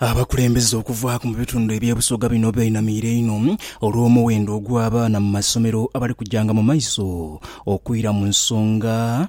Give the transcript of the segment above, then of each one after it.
Abakulembeze okuvaaku mu bitundu eby'ebusoga bino beenamiire inho olw'omuwendo ogw'abaana mu masomero abali kujanga mu maiso okwira mu nsonga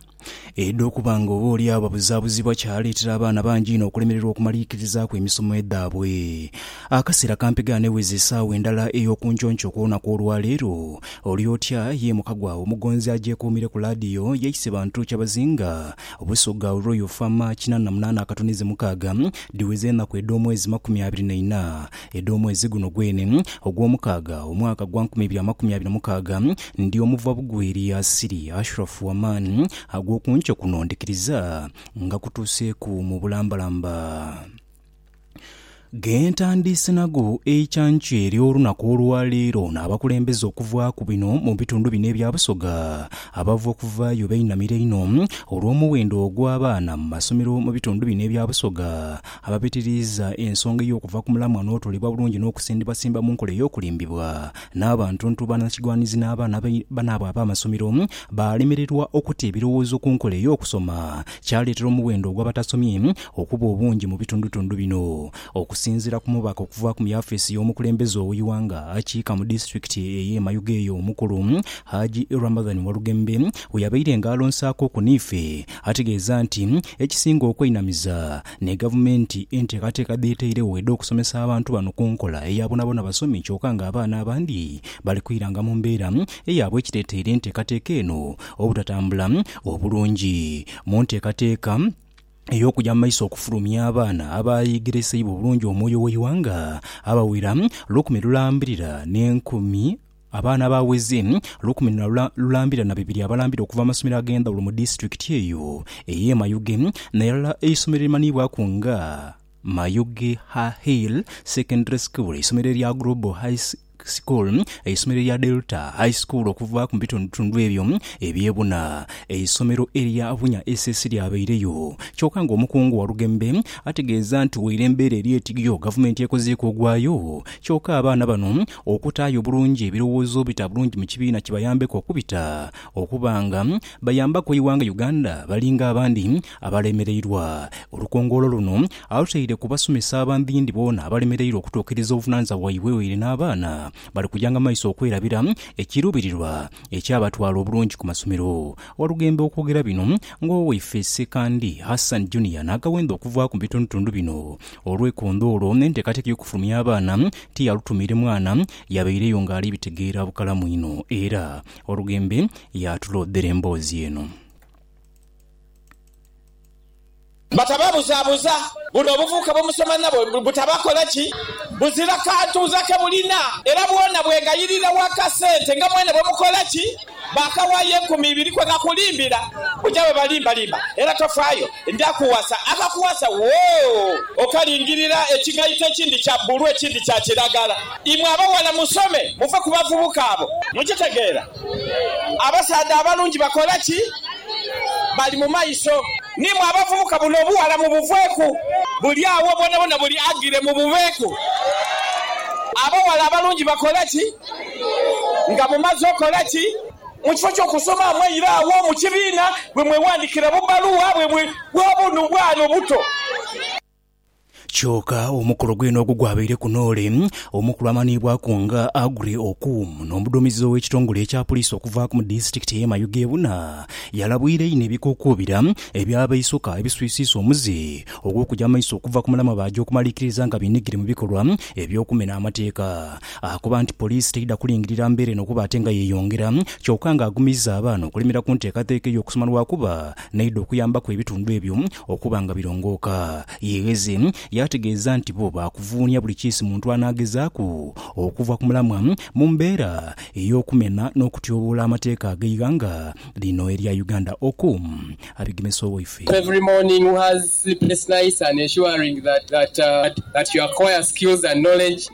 edh'okuba nga oba oli agho babuzaabuzibwa kyaleetera abaana bangi inho okulemererwa okumaliikirizaaku emisomo edhaabwe. Akaseera kampegha aneweza esaawa endala ey'okunconco okw'olunaku olwaleero olyotya ye muka gwaagho omugonzi agyekuumire ku laadiyo yaise bantu kyabazinga Obusoga olwo Yofa ma kinana na munana akatunize mukaaga, dhiweze enaku edh'omwezi makumi abiri na ina edh'omwezi guno gwene ogw'omukaaga, omwaka gwa nkumi ibiri amakumi abiri na mukaaga, ndi omuva bugwi eri Yasiri, Ashurafu wa maani ag'oku nkyo kuno ndikiriza nga kutuuseeku mu bulambalamba. Gentandiise nago eikyankya eryo olunaku olwa leero n'abakulembeze okuvaaku bino mu bitundu bino ebya Busoga abava okuvaayo bainamira inho olw'omuwendo ogw'abaana mu masomero mu bitundu bino ebya Busoga abapitiriiza ensonga ey'okuva ku mulamwa n'otolebwa bulungi n'okusimbibwasimba mu nkola ey'okulimbibwa n'abantuntu banakigwanizi n'abaana banaabwe ab'amasomero balemererwa okuta ebirowoozo ku nkola ey'okusoma kyaleetera omuwendo ogw'abatasomye okuba obungi mu bitundutundu bino. Okusinziira ku mubaka okuva ku mu yafeesi y'omukulembeze ow'eighanga akiika mu disitulikiti ey'e Mayuge eyo omukulu, Haji Ramadhan Walugembe we yabaire nga alonsaakuku n'ife, ategeeza nti ekisinga okweinamiza ni Gavumenti enteekateeka dh'etairegho edh'okusomesa abantu bano ku nkola eya bonabona basome kyoka ng'abaana abandi bali kwiranga mu mbeera eyaabwe ekireeteire enteekateeka eno obutatambula obulungi mu nteekateeka ey'okugya mu maiso okufulumya abaana abayegereseibwa obulungi omwoyo w'eighanga abawera lukumi lulambirira n'enkumi Abaana abaweze lukumi lulambirira na bibiri abalambira okuva mu masomero ag'endhawulo mu disitulikiti eyo ey'e Mayuge n'erala eisomero erimanhiibwaku nga Mayuge Ha Hill Secondary School, eisomero erya Global High School, eisomero erya Delta High School okuva mu bitundutundu ebyo eby'e buna, eisomero erya Bunya SS lyabaireyo. Kyoka nga omukungu Walugembe ategeeza nti waire embeera eri etigyo, gavumenti ekozeeku ogwayo kyoka abaana bano okutaayo obulungi ebirowoozo obita bulungi mu kibiina kibayambeku okubita okuba nga bayambaku eighanga Uganda bali nga abandi Abalemereirwa. Olukongoolo luno alutaire ku basomesa abandhindhi boona abalemereirwa okutuukiriza obuvunanizibwa bwaibwe waire n'abaana bali kujanga mu maiso okwerabira ekiruubirirwa eky'abatwala obulungi ku masomero. Walugembe okwogera bino ng'owaife Ssekandi Hassan Junior n'agawendha okuvaaku mu bitundutundu bino olw'ekondoolo n'enteekateeka ey'okufulumya abaana tiyalutumiire mwana yabaireyo ng'ali bitegeera bukalamu inho era Walugembe yaatuloodhera emboozi eno. Batababuzabuza, buno obuvubuka bwe musoma nabo butabakola ki? Buzira kantuuza ke bulina era bwona bwegayirira wa kasente nga mwene bwe mukola ki? Baakawaayo enkumi ibiri kwe nakulimbira, oja bwe balimbalimba era tofaayo, ndakuwasa akakuwasa woo okalingirira ekigaito ekindi kya bbulu ekindi kya kiragala. Imwe abawala musome muve ku bavubuka abo. Mukitegeera? Abasaadha abalungi bakola ki? Bali mu maiso. N'imwe abavubuka, buno obughala mubuveeku. Buli agho bwonabwona buli agire mubuveeku. Abaghala abalungi bakola ki nga mumaze okola ki? Mu kifo ky'okusoma mweire agho mu kibiina bwe mwewandikira bubbaluwa bwe bwa bunu bwano obuto. Kyoka omukolo gwene ogwo gwabaire ku Noole, omukulu amanhiibwaku nga Aggrey Okumu n'omuduumizi ow'ekitongole ekya Puliisi okuvaaku mu disitulikiti ey'e Mayuge ebuna, yalabwira inho ebikokuubira eby'abaisoka ebiswisiisa omuze ogw'okuja maiso okuva ku mulamwa baaja okumaliikiriza nga beenhigire mu bikolwa eby'okumena amateeka. Akoba nti Puliisi teidha kulingirira mbeera eno kuba ate nga yeeyongera kyoka nga agumiiza abaana okulemera ku nteekateeka ey'okusoma lwakuba n'aidha okuyambaku ebitundu ebyo okuba nga birongooka. Yegheze yaategeeza nti bo baakuvuunia buli kiisi muntu anaagezaaku okuva ku mulamwa mu mbeera ey'okumena n'okutyoboola amateeka ag'eighanga lino erya Uganda. Oku abigemesa owaife.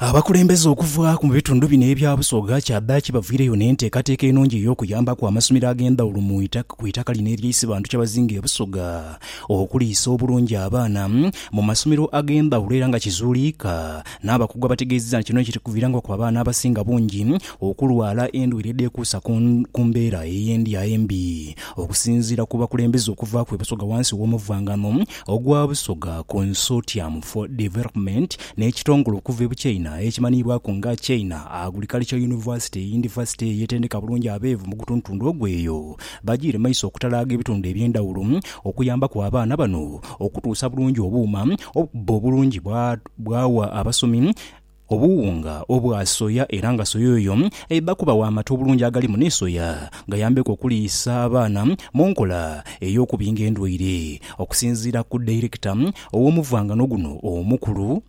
Abakulembeze okuva mu bitundu bino ebya Busoga kyadhaaki baviireyo n'enteekateeka enungi ey'okuyambaku amasomero ag'endhawulo ku itaka lino erya Isibantu Kyabazinga e Busoga okuliisa obulungi abaana mu masomero ag'endhawulo era nga kizuuliika n'abakugu abategeezezza nti kino kiri kuviirangaku abaana abasinga bungi okulwala endwaire edhekuusa ku mbeera ey'endya embi Okusinziira ku bakulembeze okuva ku e Busoga wansi w'omuvangano ogwa Busoga Consortium for Development n'ekitongole okuva e Buchaina ekimanhiibwaku nga China Agriculture University, yunivasite ey'etendeka bulungi abeevu mu gutundutundu ogwo eyo, bajiire maiso okutalaaga ebitundu eby'endhawulo okuyambaku abaana bano okutuusa bulungi obuuma obukubba obulungi bwagha abasomi obuwunga obwa soya era nga soya oyo aidha kubagho amata obulungi agalimu ni soya gayambeku okuliisa abaana mu nkola ey'okubinga endwaire. Okusinziira ku Dairekita Ow'omuvwangano guno omukulu,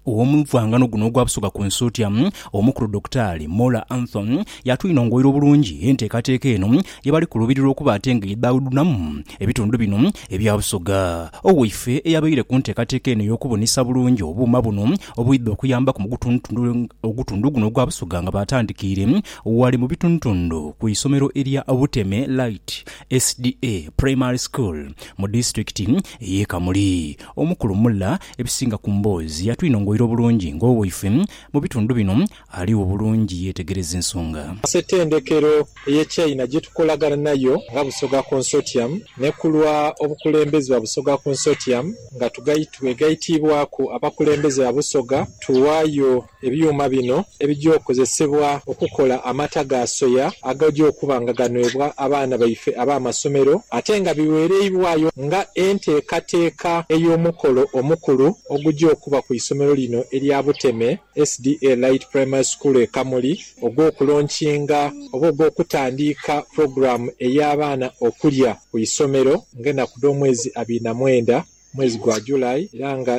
Ow'omuvwangano guno ogwa Busoga ku Nsuutia, Omukulu Dokitaali Mola Anthony y'atwinongoira obulungi enteekateeka eno ye bali kuluubirirwa okuba ate nga edhaudhunamu ebitundu bino ebya Busoga. Owaife eyabaire ku nteekateeka eno ey'okubunisa bulungi obuuma buno obwidha okuyambaku mu gutundutundu ogutundu guno ogwa Busoga nga baatandikiire ghale mu bitundutundu ku isomero erya Buteme Light SDA Primary School mu disitulikiti ey'e Kamuli. Omukulu Mulla ebisinga ku mboozi yatwinongoira obulungi ng'owaife mu bitundu bino aligho bulungi yeetegereza ensonga. Ssetendekero ey'e China gye tukolagana nayo nga Busoga Consortium ne ku lwa obukulembeze bwa Busoga Consortium nga twegaitiibwaku abakulembeze ba Busoga tuwaayo Ebyuma bino ebija okozesebwa okukola amata ga soya agaja okuba nga ganwebwa abaana baife ab'amasomero ate nga bighereibwayo nga enteekateeka ey'omukolo omukulu oguja okuba ku isomero lino erya Buteme SDA Light Primary School e Kamuli ogw'okulonkinga oba ogw'okutandiika pulogulaamu ey'abaana okulya ku isomero ng'enaku dh'omwezi abiri na mwenda mwezi gwa July era nga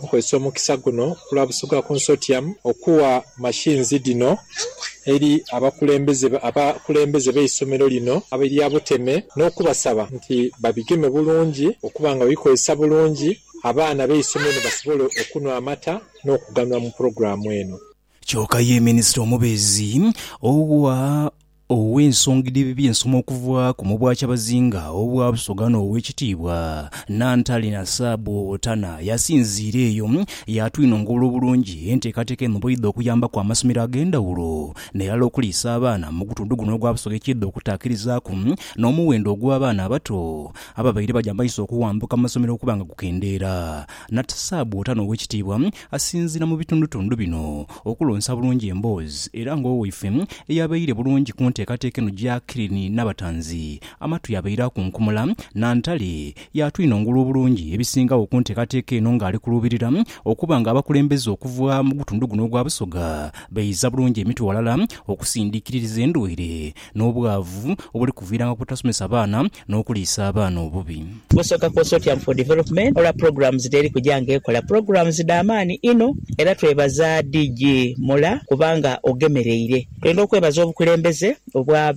nkozesa omukisa guno kulwa Busoga Consortium okuwa machines dhino eri abakulembeze abakulembeze b'eisomero lino erya Buteme n'okubasaba nti babigeme bulungi okuba nga babikozesa bulungi abaana b'eisomero lino basobole okunhwa amata n'okuganhula mu pulogulaamu eno. Kyoka ye Minisita omubeezi owa ow'ensonga edh'eby'ensoma okuva ku mu Bwakyabazinga obwa Busoga n'Owekitiibwa Nantale Nasaabu Owotana yasinziira eyo yaatwinongola obulungi enteekateeka eno bweidha okuyambaku amasomero ag'endhawulo n'erala okuliisa abaana mu gutundhu guno ogwa Busoga ekiidha okutaakirizaaku n'omuwendo ogw'abaana abato ababaire baja maiso okuwambuka mu masomero okuba nga gukendeera. Natsaabu Otana Owekitiibwa Asinziira mu bitundutundu bino okulonsa bulungi emboozi era ng'owaife eyabaire bulungi ku nteekateeka eno Jacqueline Nabatanzi amatwi abaire akunkumula. Nantale y'atwinongula obulungi ebisingagho ku nteekateeka eno ng'ali kuluubirira okuba ng'abakulembeze okuva mu gutundu guno ogwa Busoga bayiza bulungi emitwe ghalala okusindiikiririza endwaire n'obwavu obuli kuviiranga ku butasomesa baana n'okuliisa abaana obubi. Kusooka kwosa otya mu for development olwa pulogulaamu zino eri kuja nga ekola. Pulogulaamu zi dha maani inho era twebaza DG Mula kubanga ogemereire. Twendha okwebaza obukulembeze obwa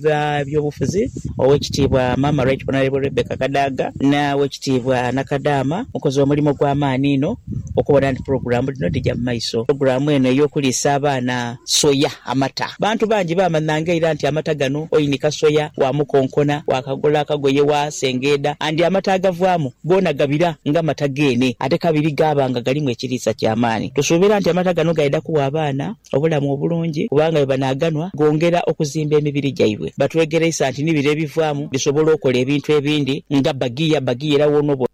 byobufuzi, Owekitiibwa Maama Right Honourable Rebecca Kadaga na Wekitiibwa Nakadaama, mukoze omulimo gwa maani inho okubona nti pulogulaamu dhino dhija mu maiso. Pulogulaamu eno ey'okuliisa abaana Soya, amata. Bantu bangi baamanhanga ira nti amata gano oinika soya, waamukonkona, waakagola akagoye, waasengeedha and amata agavaamu goona gabira nga mata geene ate kabiri gaaba nga galimu ekiriisa ky'amaani. Tusuubira nti amata gano gaidha kuwa abaana obulamu obulungi kubanga bwe banaaganwa goongera okuzimba emibiri gyaibwe. Batwegereisa nti ni bire ebivaamu bisobola okola ebintu ebindi nga bbagiya, bbagiya era woona oba.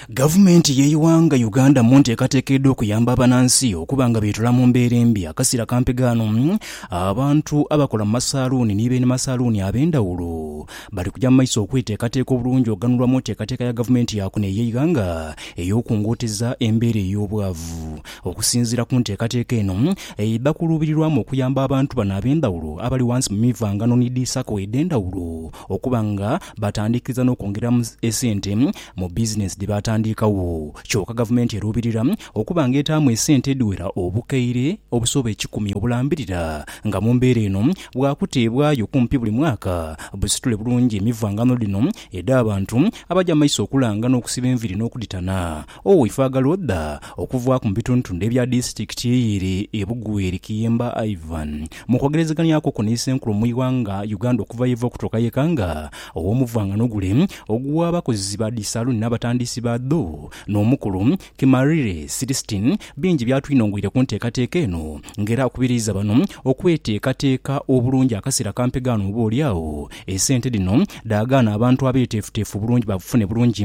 Gavumenti y'eighanga Uganda mu nteekateeka edh'okuyamba abanansi okuba nga beetula mu mbeera embi akasiira ka mpegaano, abantu abakola mu masaaluuni ni beene masaaluuni ab'endhawulo bali kuja mu maiso okweteekateeka obulungi okughanulwa mu nteekateeka ya gavumenti ya kuno ey'eighanga ey'okungooteza embeera ey'obwavu. Okusinziira ku nteekateeka eno, eidha kuluubirirwamu okuyamba abantu bano ab'endhawulo abali ghansi mu mivangano ni dhi sacco edh'endhawulo okuba nga batandiikiriza n'okwongeramu esente mu bizinensi dhi baatandiikagho kyoka gavumenti eruubirira okuba nga etaamu esente edhiwera obukaire obusoba ekikumi obulambirira nga mu mbeera eno bwakuteebwayo kumpi buli mwaka busitule bulungi emivangano dhino edh'abantu abaja maiso okulanga n'okusiba enviiri n'okudhitana Oweifo agala odha okuvaaku mu bitundutundu ebya disitikiti ere e Bugweri Kiyemba Ivan mu kwogerezeganyaku okwo ni Ssenkulu mu ighanga Uganda okuva yeva okutuuka yeka nga owomuvangano gule ogwa bakozi ba dhi saluuni n'abatandiisi baadho n'omukulu Kimarire Silistin bingi byatwinongweire ku nteekateeka eno nga era akubiriiza bano okweteekateeka obulungi akaseera ka mpegaano oba olyagho esente dhino dhaagaana abantu abeeteefuteefu obulungi babufune bulungi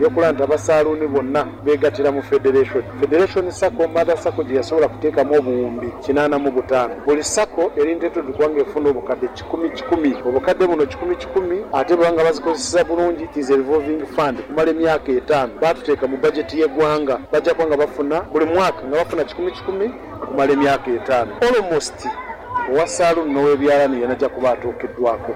Yakola nti abasaaluuni bonna beegattira mu federation. Federation Sacco Mother Sacco gye yasobola kuteekamu obuwumbi kinaana mu butaano. Buli Sacco eri ntetuddwa ng'efuna obukadde kikumi kikumi. Obukadde buno kikumi kikumi ate bweba nga bazikozeseza bulungi is a revolving fund okumala emyaka etaano. Baatuteeka mu budget y'eggwanga. Bajja kuba nga bafuna buli mwaka nga bafuna kikumi kikumi okumala emyaka etaano. Almost owa saloon n'owebyalani yena ajja kuba atuukiddwako.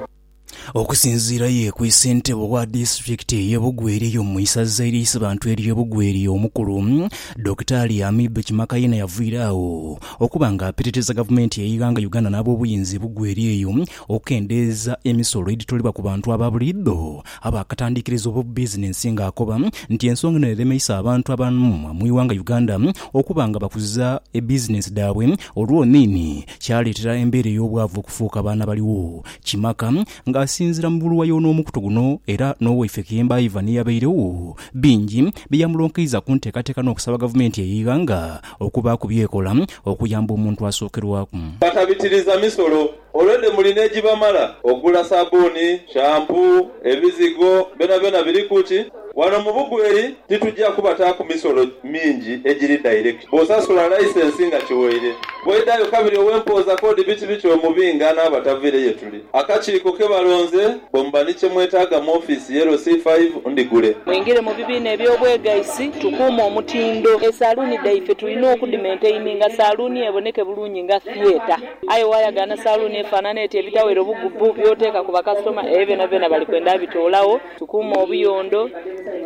Okusinziira ye ku ssentebe owa disitulikiti eye Bugweri mu isaza ery'eisabantu erye Bugweri omukulu Dokita Ali Amib Kimakaina yavuyira agho okuba nga apitiriza gavumenti yeighanga Uganda n'abobuyinza ebugweri eyo okukendeeza emisolo edhitolebwa ku bantu aba buliidho abakatandikiriza obubizinensi nga akoba nti ensonga eno eremeisa abantu abamu mwighanga Uganda okuba nga bakuza ebizinensi dhaabwe olwoniini kyaleetera embeera ey'obwavu okufuuka abaana baligho kimaka. Ng'asinziira mu buluwa y'onoomukutu guno era n'owaife Kiyemba Ivan eyabairegho, bingi bye yamulonkeiza ku nteekateeka n'okusaba gavumenti ey'eighanga okubaaku by'ekola okuyamba omuntu asookerwaku. Batabitiriza misolo already muli n'egibamala okugula sabuuni, shampoo, ebizigo byonabyona biriku ki? Wano mu Bugweri titugya kubataaku misolo mingi egiri direct. Bw'osasula licence nga kiwoire, bw'oidhayo kabiri ow'empooza k'odi biti biti omubinga n'abataviire ye tuli. Akakiiko ke balonze bwe muba ni kye mwetaaga mu ofiisi ye LC five ndhigule. Mwingire mu bibiina eby'obwegaisi tukuume omutindo. Esaluuni dhaife tulina okudimentaininga saluuni eboneke bulungi nga theatre. Aye waayagaana saluuni efaanana etyo ebitawera obugubu by'oteeka ku bakasitoma ebyo byonabyona bali kwenda abitoolagho. Tukuume obuyondo,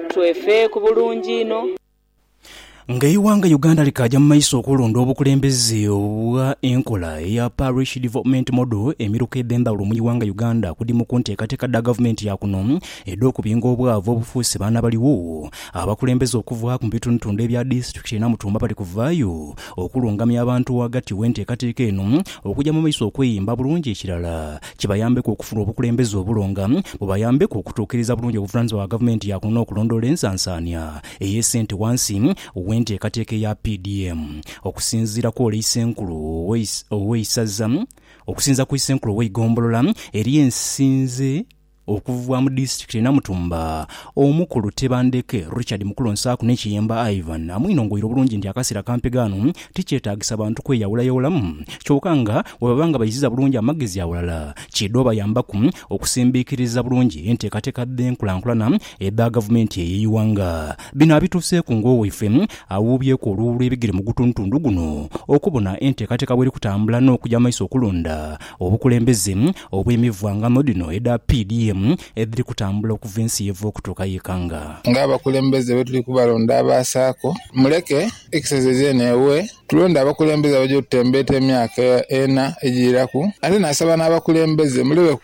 twefeeku bulungi inho. Nga eighanga Uganda likaaja mu maiso okulonda obukulembeze obwa enkola eya Parish Development Model, emiruka edhendhaghulo mu ighanga Uganda kudi mu kunteekateeka dha gavumenti ya kuno edh'okubinga obwavu obufuuse baana baligho. Abakulembeze okuva mu bitundutundu ebya disiturikiti ye Namutumba bali kuvaayo okulungamya abantu ghagati gh'enteekateeka eno okuja mu maiso okweyimba bulungi ekirala kibayambeku okufuna obukulembeze obulonga bubayambeku okutuukiriza bulungi obuvunaanyizibwa bwa Gavumenti ya kuno n'okulondoola ensansaania ey'esente wansi w'enteekateeka eya PDM okusinziira ku Ole Isenkulu ow'eisaza okusinziira ku Isenkulu ow'eigombolola eri ensinze okuva mu disitulikiti e Namutumba Omukulu Tebandeke Richard Mukulonsaaku ne Kiyemba Ivan amwinongoire obulungi nti akaseera kampi ghano Tikyetaagisa bantu kweyawulayawulamu, kyoka nga bwe baba nga baiziza bulungi amagezi aghalala, kiidha obayambaku okusimbiikiriza bulungi enteekateeka dh'enkulankulana edha gavumenti eyo eighanga. Bino abituuseeku ng'owaife awuubyeku oluwuulu ebigere mu gutundutundu guno okubona enteekateeka bweri kutambula n'okuja maiso okulonda obukulembeze obw'emivwangano dhino edha PDM edhiri kutambula okuva ensi yeva okutuuka y'ekanga. Ng'abakulembeze bwe tuli kubalonda aba Sacco, muleke Ekiseera eidha n'ewe tulonde abakulembeze abaja otutembeeta emyaka ena ejiiraku. Ate naasaba n'abakulembeze muleke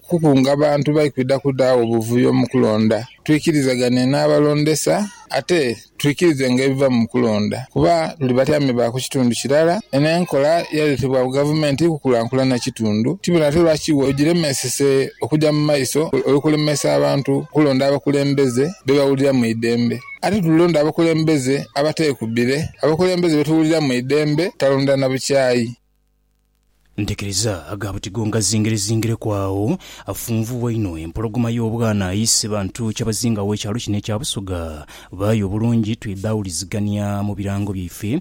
kukunga bantu by kwidha kudhaawo buvuyo mu kulonda. Twikirizagane n'abalondesa ate twikirizenga ebiva mu kulonda kuba tuli batyame ba ku kitundu kirala. Eno enkola yaletebwa gavumenti kukulankulana kitundu. Tibona ate lwaki ogiremesese okuja mu maiso olw'okulemesa abantu okulonda abakulembeze be bawulira mu idembe. Ate tulonda abakulembeze abateekubire, abakulembeze be tuwulira mu idembe, talonda na bukyayi. Ntekereza aga butigo nga zingirezingireku agho, afunvubwa inho empologoma y'obwana ayiise bantu kyabazinga aw'ekyalo kino ekya Busoga. Baaya obulungi twidha awulizigania mu birango byaife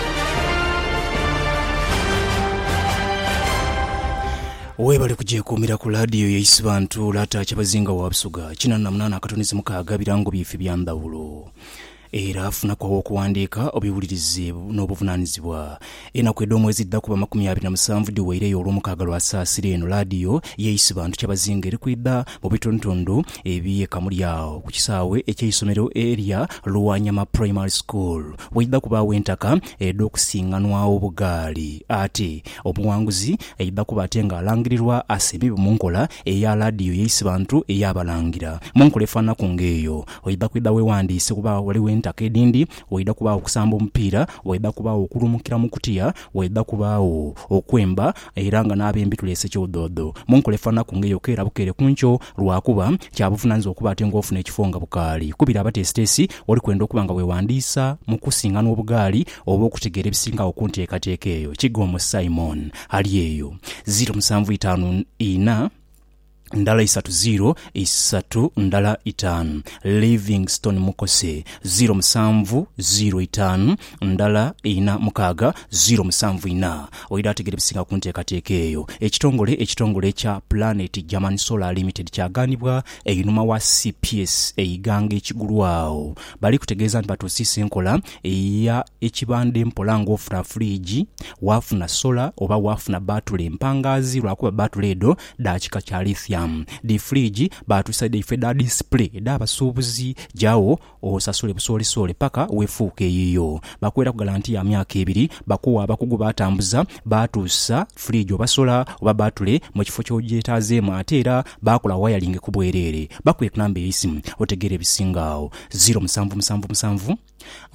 Webale kugyekuumira ku laadiyo ya Isibantu, Lata Kyabazinga wa Busoga, kinana na munaana akatunduzi mukaaga birango bye ife bya ndhawulo. Era funaku aw'okuwandiika obiwulirize n'obuvunaanizibwa. Enaku edh'omwezi edhidha kuba amakumi abiri na musanvu dhiweireyo Olwomukaaga lwa Saasira eno laadiyo ya Isibantu Kyabazinga eri kwidha mu bitundutundu eby'e Kamuli agho ku kisaawe eky'eisomero erya Lwanyama Primary School. Waidha kubaagho entaka edh'okusinganwagho obugaali. Ate omuwanguzi aidha kuba ate nga alangirirwa asimbibwe mu nkola eya laadiyo ya Isibantu ey'Abalangira. Mu nkola efaananaku ng'eyo, oidha kwidha weewandiise kuba ghaligho entaka edhindi, waidha kubaagho okusamba omupiira, waidha kubaagho okulumukira mu kutiya, waidha kubaagho okwemba era nga n'abembi tuleese kyodhoodho. Mu nkola efaananaku ng'eyo keera bukeere ku nkyo, Lwa kuba, kya buvunaanyizibwa okuba ate ng'ofuna ekifo nga bukaali. Kubira abateesiteesi, oli kwenda okuba nga weewandiisa mu kusinganwa obugaali oba okutegeera ebisingagho ku nteekateeka eyo? Kighomu Simon, ali eyo. Ziiro musanvu itaanu ina, ndala isatu ziiro isatu ndala itaanu. Livingstone Mukose, ziiro musanvu ziiro itaanu ndala ina mukaaga ziro musanvu ina. Oidha ategera ebisinga ku nteekateeka eyo. Ekitongole ekitongole ekya Planet German Solar Limited kyagaanibwa einhuma wa cps eighanga ekigulwagho. Bali kutegeeza nti batuusiisa enkola eya ekibandhe mpola ng'ofuna fridge, waafuna solar oba waafuna bbaatule empangaazi lwakuba bbaatule edho dha kika kya lithium. Dhi fridge baatuusa dhaifo edha display edh'abasuubuzi, gyawo Osasule busoolesoole paka wefuuke eyiyo. Bakuweraku galanti ya myaka ebiri. Bakuwa abakugu batambuza baatuusa fridge oba sola oba batule mu kifo ky'ogyetaazeemu ate era baakola wayalingi ku bwereere. Bakuwe ku namba ey'eisimu otegeere ebisinga agho, ziro musanvu musanvu musanvu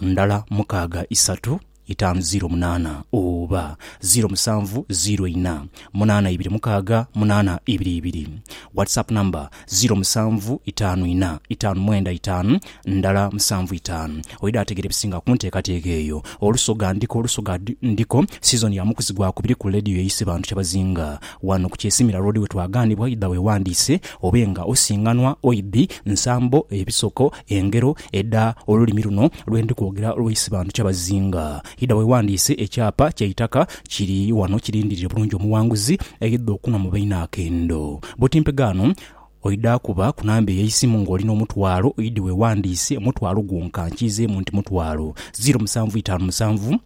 ndala mukaaga isatu itaanu ziiro munaana oba ziiro musanvu ziiro ina munaana ibiri mukaaga munaana ibiri ibiri WhatsApp number ziiro musanvu itaanu ina itaanu mwenda itaanu ndala musanvu itaanu Oida ategera ebisinga kunteekateeka eyo Olusoga ndiko Olusoga ndiko Season ya mukuzi gwakubiri ku leediyo eyise bantu kyabazinga wano ku Kyesimira Road wetwagaanibwa Oida wewandiise obe nga osinganwa Oidhi nsambo ebisoko Engero edha olulimi luno lwe ndi kwogera olw'eisibandhu kyabazinga. Idha weewandiise ekyapa ky'eitaka kiri wano kirindirire bulungi omuwanguzi aidha okunhwa mu baine akendo. Buti mpegaano oidha kuba ku namba ey'eisimu ng'oli n'omutwalo, oidhi weewandiise omutwalo gwonka nkiizeemu nti mutwalo. Ziiro musanvu itaanu musanvu.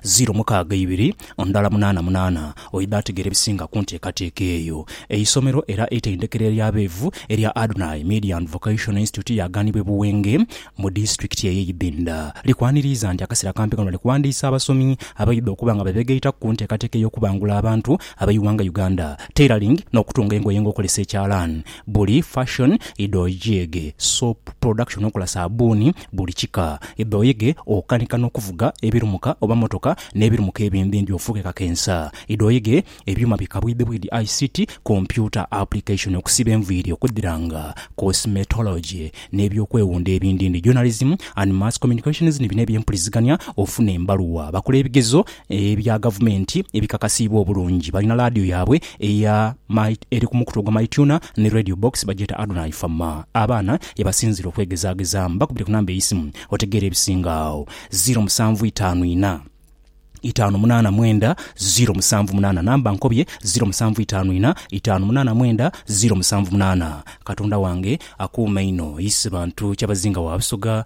ziro mukaaga ibiri ndala munaana munaana, oidha ategeera ebisinga ku nteekateeka eyo. Eisomero era eitendekero ery'abeevu erya Adonai Media and Vocational Institute yaagaanibwa e Buwenge mu disitulikiti eye Ibinda. Likwaniriiza nti akaseera kampi kano bali kuwandiisa abasomi abaidha okuba nga bebegaitaku ku nteekateeka ey'okubangula abantu abeighanga Uganda, tailoring n'okutunga engoye ng'okolesa ekyalaani, buli, fashion, idho, jeege, soap production okola saabbuuni, buli kika. Idha oyege okanika n'okuvuga ebirumuka oba mmotoka n'ebirumuka ebindi ndi ofuuke kakensa. Idha oyege ebyuma bi kabwidhibwidhi, ICT, kompyuta, application, okusiba enviiri, okudhiranga, cosmetology, n'eby'okwewunda ebindi ndi journalism and mass communications ni bino eby'empulizigania, ofune embaluwa, bakole ebigezo Ebya gavumenti ebikakasiibwa obulungi. Balina laadiyo yaabwe eya my eri ku mukutu ogwa MyTuner ni Radio Box, bagyeta Adonai fa ma. Abaana ye basinziira okwegezaagezaamu. Bakubire ku namba ey'eisimu otegeere ebisinga agho, ziro musanvu itaanu ina, itaanu munaana mwenda, ziro musanvu munaana. Namba nkobye, ziro musanvu itaanu ina, itaanu munaana mwenda, ziro musanvu munaana. Katonda wange akuuma inho. Ise bantu Kyabazinga wa Busoga.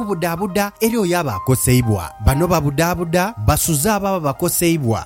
Okubudaabuda eri oyo aba akoseibwa. Bano babudaabuda basuze abo ababakoseibwa